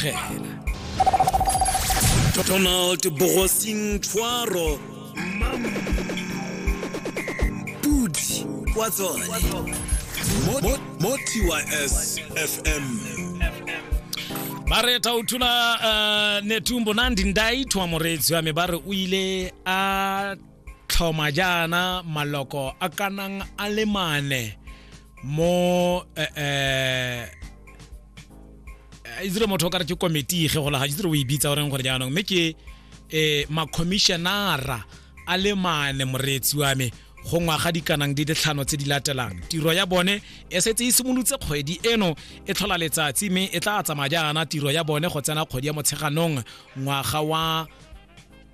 phela donald bogosing tshwaro pudi kwa tsone Mo- mo- mo tys fm ba re thauthola uh, netumbo nandi ndaithwa moreetsi wa me ba re o ile a tlhoma jaana maloko a kanang a le mane mo eh, eh, itse motho o ka re ke komiti ge go laga itse o e bitsa goreng gore jaanong mme ke um makhomišenara a le mane moreetsi wa me go ngwaga dikanang di ditlhano tse di latelang tiro ya bone e setse e simolotse kgwedi eno e tlhola letsatsi mme e tla tsamaya jaana tiro ya bone go tsena kgwedi ya motsheganong ngwaga wa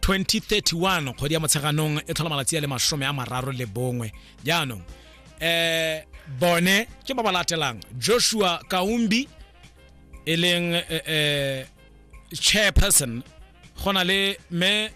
2031 kgwedi ya motsheganong e tlhola malatsi a le masome a mararo le bongwe jaanong eh bone ke ba ba latelang joshua kaumbi e leng eh, eh, chairperson go na le me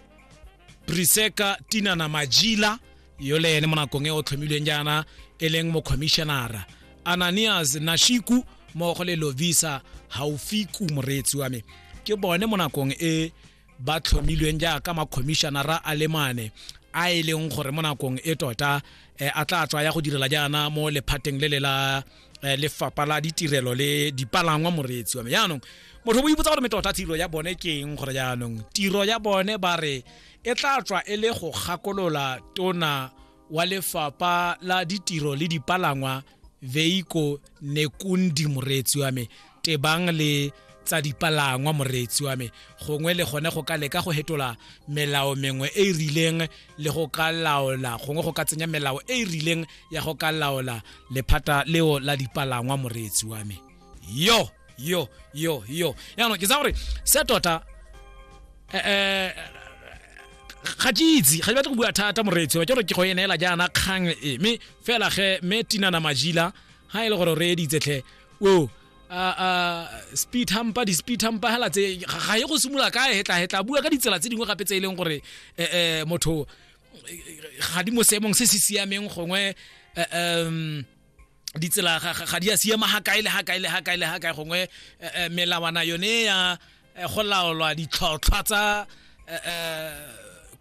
priseka tinana majila yo le ene mo nakong e o tlhomilweng jaana e leng mokhomishenara ananias nashiku mmogo le lovisa haufiku moreetsi wa me ke bone mo nakong e ba tlhomilweng jaaka makhomišenara a le mane a e leng gore mo nakong e tota eh, a tla tswa ya go direla jaana mo lephateng le le la eh, lefapha la ditirelo le dipalangwa moreetsi wa me jaanong motho bo ipotsa gore metota tiro ya bone ke eng gore jaanong tiro ya bone ba re e tla tswa e le go gakolola tona wa lefapa la ditiro le dipalangwa veiko nekundi moreetsi wa me tebang le tsa dipalangwa moreetsi wa me gongwe le gone go ka leka go hetola melao mengwe e e rileng le go ka laola gongwe go ka tsenya melao e e rileng ya go ka laola lephata leo la dipalangwa moreetsi wa me yo yo yo yo yaanong ke tsa gore se tota eh, eh, ga ke itse ga ke batle go bua thata moreetsi wa ke gore ke go e neela jaana kgang e mme fela ge mme tinana majila ga e le gore o reeditsetlhe o a- a, speed hampa di-speed hampa hela tse ga ga ye go simolola ka hetlahetla bua ka ditsela tse dingwe gape tse e leng gore eh, eh, motho eh, ga di mo seemong se se siameng gongwe eh, em, ditsela ga- ga ga di a siama ga kae le ga kae le ga kae le ga kae gongwe eh, eh, melawana yone ya eh, go laolwa ditlhotlhwa tsa eh, eh,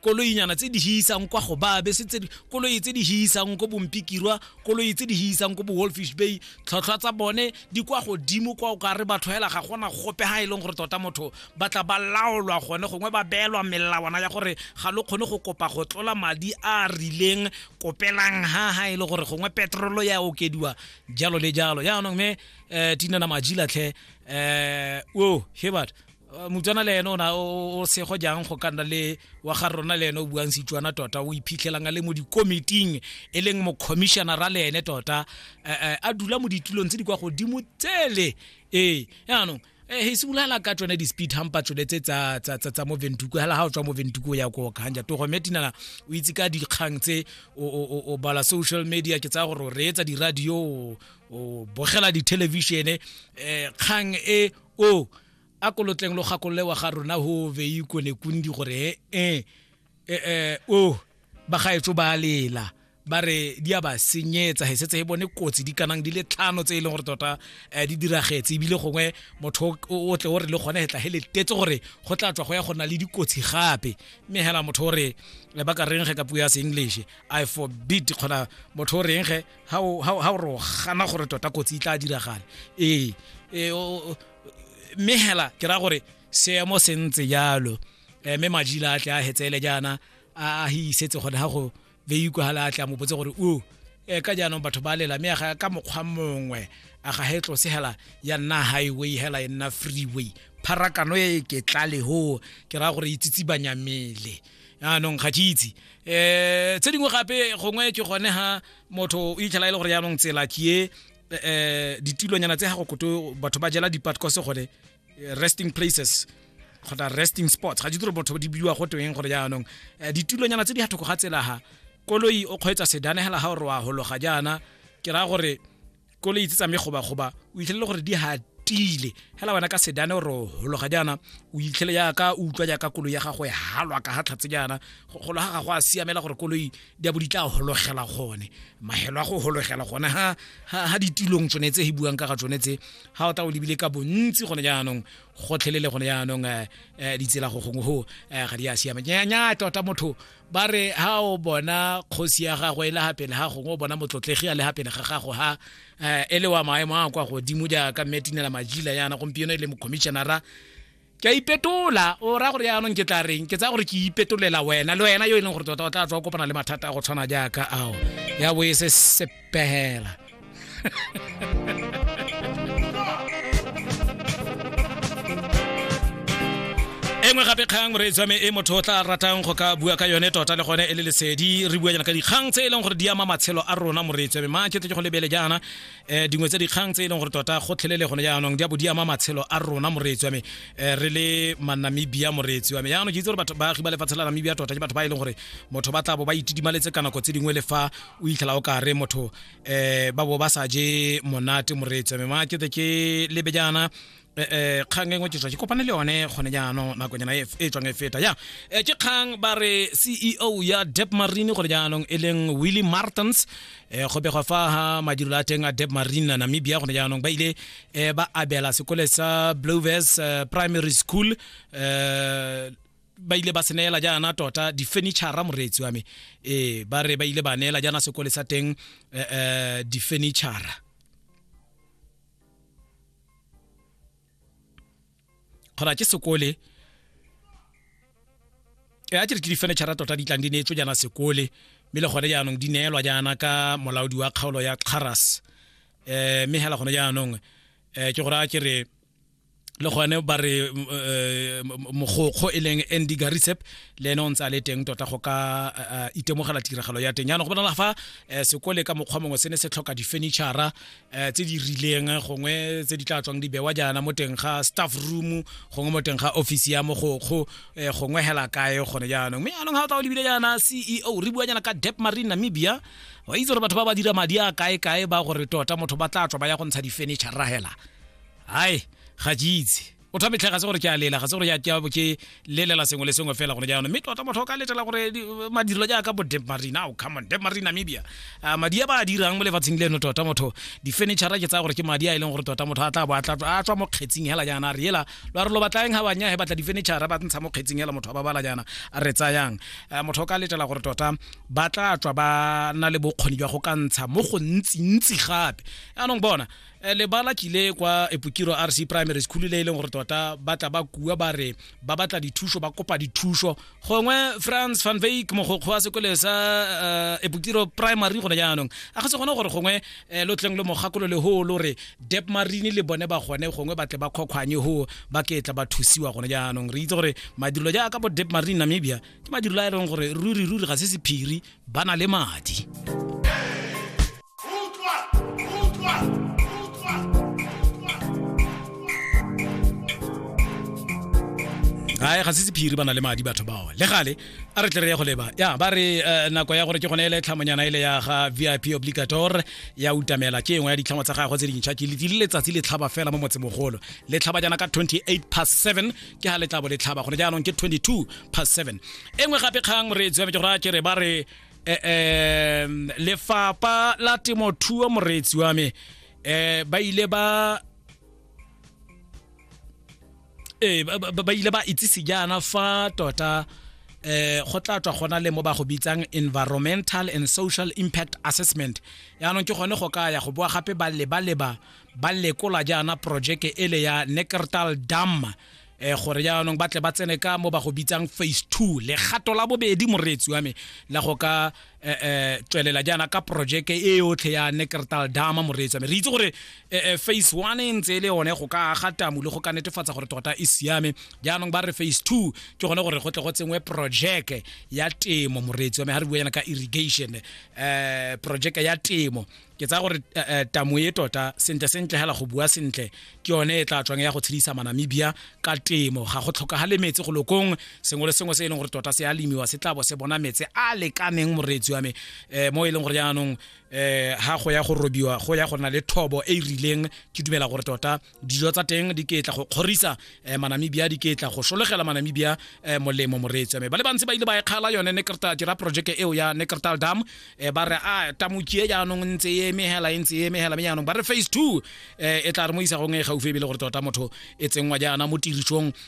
koloinyana tse di hisang kwa go ba bese tse di- koloi tse di hisang ko bompikirwa koloi tse di hisang ko bo-wolfish bay tlhotlhwa tsa bone di kwa godimo kwa o ka re batho hela ga gona gope ga e leng gore tota motho ba tla ba laolwa gone gongwe ba beelwa melawana ya gore ga lo kgone go kopa go tlola madi a a rileng kopelang ha ha e le gore gongwe petrolo ya okediwa jalo le jalo yaanong me um tina na majilatlhe um o hebert motswana le ene o na o sego jang go ka nna le wa ga rona le ene o buang setswana tota o iphitlhelang a le mo dikomiting e leng mocommissionera le ene tota a dula mo ditulong tse di kwa godimo tsele ee yaanong eh he simolala ka tsone di speed hampa tsone tse tsa tsa tsa mo ventuku hala ha o tswa mo ventuku ya go khanja to go metinala o itse ka dikgang tse o o o bala social media ke tsa gore re etsa di radio o bogela di television eh kgang e o a kolotleng lo gakolole wa ga rona ho veyi kone kundi gore eh eh, eh, o oh, bagaetso ba lela ba re di a ba senyetsa he setse e bone kotsi di kanang di le tlhano tse e leng gore tota um di diragetse ebile gongwe motho o tle o re le gone hetla he letetse gore go tla tswa go ya go na le dikotsi gape mme hela motho o re eh, ba ka reng ge ka puo ya seenglish i forbid kgona motho o reng ge ga o re o gana gore tota kotsi e tla diragale ee eh, mme hela ke raya gore seemo se ntse jalo eh, mme majila a tle a hetsele jaana a hisetse gone ga go veikwa ga le a tle a mo botse gore o eh, ka jaanong batho ba lela mme ka mokgwa mongwe a ga he tlose hela ya nna highway hela e nna freeway pharakano e ke tlale ho ke raya gore itsitsi banyamele yaanong ga ke itse um tse dingwe gape gongwe ke gone ga motho o itlhela e le gore yaanong tsela ke e um ditulonyana tse ga go koto batho ba jela dipatcose gone eh, resting places kgotsa resting spots ga di tiro botho di biwa go teng gore jaanong eh, ditulonyana tse di gathoko ga tsela ga koloi o kgweetsa sedanegela ga gore wa hologa jaana ke raya gore koloi tse tsame gobagoba o itlhelele gore di hatile hela wena ka sedane gore o hologa jaana o itlhele jaaka o utlwa jaaka koloi ya gago e halwa ka ga tlhatse jaana golo ga gago a siamela gore koloi di a bo di tla hologela gone mahelo a go hologela gone ha ditulong tsone tse e buang ka ga tsone tse ga o ta o lebile ka bontsi gone jaanong gotlhelele gone jaanong um ditsela go gongwe go um ga di a siama nya tota motho ba re ga o bona kgosi ya gago e le gapele ga gongwe o bona motlotlegi a le gapele ga gago ga um e le wa maemo a kwa godimo jaaka mmetinela majila yana gompieno e le mocommissionara ke a ipetola o raya gore yaanong ke tla reng ke tsaya gore ke ipetolela wena le wena yo e leng gore tota o tla tswa o kopana le mathata a go tshwana jaaka ao ya bo e se sepegela engwe gape kgang re tswame e motho o tla ratang go ka bua ka yone tota le gone e le lesedi re bua jana ka dikgang tse e leng gore di ama matshelo a rona moreetswame ma ke tle ke go lebele jaana eh dingwe tse dikgang tse e leng gore tota gotlhelele gone jaanong di a bo di ama matshelo a rona moreetsi wa me eh, re le manamibia moreetsi wa me jaanong ke itse gore batho baagi ba lefatshe la namibia tota ke batho ba e leng gore motho ba tla bo ba itidimaletse ka nako tse dingwe le fa o itlhela o kare motho um ba bo ba sa je monate moreetsi wa me ma ke ke lebe jaana Eh, eh, kgang engwe ke tswa ke kopane le yone gone jaanong nakonyana e, e tswang e feta ya eh, ke kgang ba re ceo ya dep marine gore jaanong e leng willy martins um go begwa fa ga madirelo a teng a dep marine namibia gone jaanong ba ile um ba abela sekole sa bloves primary school um ba ile ba seneela jaana tota di-furniture moreetsi wa me ee ba re ba ile ba neela jaana sekole sa teng um di-furniture kgona ke sekole e a ke di furniture tota di tlang di neetswe jaana sekole mme le gone jaanong di neelwa jaana ka molaodi wa kgaolo ya xaras eh mme hela gone jaanong eh ke gore a ke re le gone ba re eh, mogokgo e leng andy garisep le ene o ntse a le teng tota go ka eh, itemogela tiragalo ya teng jaanong go bonala fa eh, sekole ka mokgwa mongwe se ne se tlhoka di-furnitura eh, tse di rileng gongwe tse di tla tswang di bewa jaana mo teng ga staff room gongwe mo teng ga office ya mogokgo eh, gongwe hela kae gone jaanong mme anong ga o tla o lebile jaana ceo re bua jaana ka dep marine namibia wa itse gore batho ba ba dira madi a kae kae ba gore tota motho ba tla tswa ba ya go ntsha di-furniture rahela hai ga ke itse o tha metlhega se gore ke a lela ga se gore ke abo ke lelela sengwe le sengwe fela gone jaanong mme tota motho o ka letela gore madirelo jaaka bo dep marina o oh, come on dep marina namibia ah, madi a ba a dirang mo lefatsheng leno tota motho di-furniture ke tsaya gore ke madi a e leng gore tota motho a tla bo a tswa mo kgetsing hela jaana a re ela lo a re lo batlaeng ga banya he batla di-furniture ba ntsha mo kgetsing hela motho a ba bala jaana a re tsayang ah, motho o ka letela gore tota ba tla tswa ba na le bokgoni jwa go ka ntsha mo go ntsi-ntsi gape jaanong bona Eh, lebala kile kwa epokiro rc primary school le e leng gore tota ba tla ba kua ba re ba batla dithuso ba kopa dithuso gongwe france van vake mogokgo wa sekole sa uh, eh, epokiro primary gone jaanong a ga se gone gore gongwe eh, lo tleng le mogakolo le hoo lo re dep marine le bone ba gone gongwe ba tle ba kgokgwanye hoo ba ke tla ba thusiwa gone jaanong re itse gore madirelo jaaka bo dep marine namibia ke madirelo a e leng gore ruri ruri ga se sephiri ba na le madi ae ga se sephiri ba na le madi batho bao le gale a re tle re ye go leba ya ba re eh, nako ya gore ke gone ele tlhamonyana ele ya ga vip obligator ya utamela ke engwe ya ditlhamo tsa gagwe tse dintšha ke le letsatsi le tlhaba fela mo motsemogolo le tlhaba jana ka 28 past 7 ke ha le tla bo le tlhaba gone jaanong ke 22 past 7 e nngwe gape kgang moreetsi wa me ke go raya ke re ba re um lefapa la temothuo moreetsi wa me um ba ile ba ee ba ile ba itsise jaana fa tota eh go tla tswa gona le mo ba go bitsang environmental and social impact assessment yaanong ke gone go ka ya go boa gape ba leba leba ba lekola jaana projeke ele ya neckertal dam eh gore jaanong ba tle ba tsene ka mo ba go bitsang phase two legato la bobedi moreetsi wa me la go ka eh, eh, tswelela jaana ka projeke e yotlhe ya neckertal dama moreetsi wa me re itse gore eh, eh, phase one e ntse e le yone go ka aga tamu le go ka netefatsa gore tota e siame jaanong ba re phase two ke gone gore go tle go tsenngwe projeke ya temo moreetsi wa me ga re bua yana ka irrigation eh projeke ya temo ke tsaya gore eh, eh, tamo e tota sentle sentle hela go bua sentle ke yone e tla tswang ya go tshedisa manamibia ka temo ga go tlhokagale metsi go lokong sengwe le sengwe se e leng gore tota se a lemiwa se tlabo se bona metsi a lekaneng moreetsi wa me um mo e leng gore jaanong um ga go ya go robiwa go ya go nna le thobo e e rileng ke dumela gore tota dijo tsa teng di ketla go kgorisa eh, manamibia di ketla go solegela manamibia eh, molemo moreetsi me ba le bantsi ba ile ba ekgala yone nekrta dira projeke eo ya nekrtal dam eh, ba re a ah, tamokie jaanong ntse e emegela e ntse e emegela me jaanong ba re phase two eh, e tla re mo isagong e gaufi ebile gore tota motho e tsenngwa jaana mo tirisong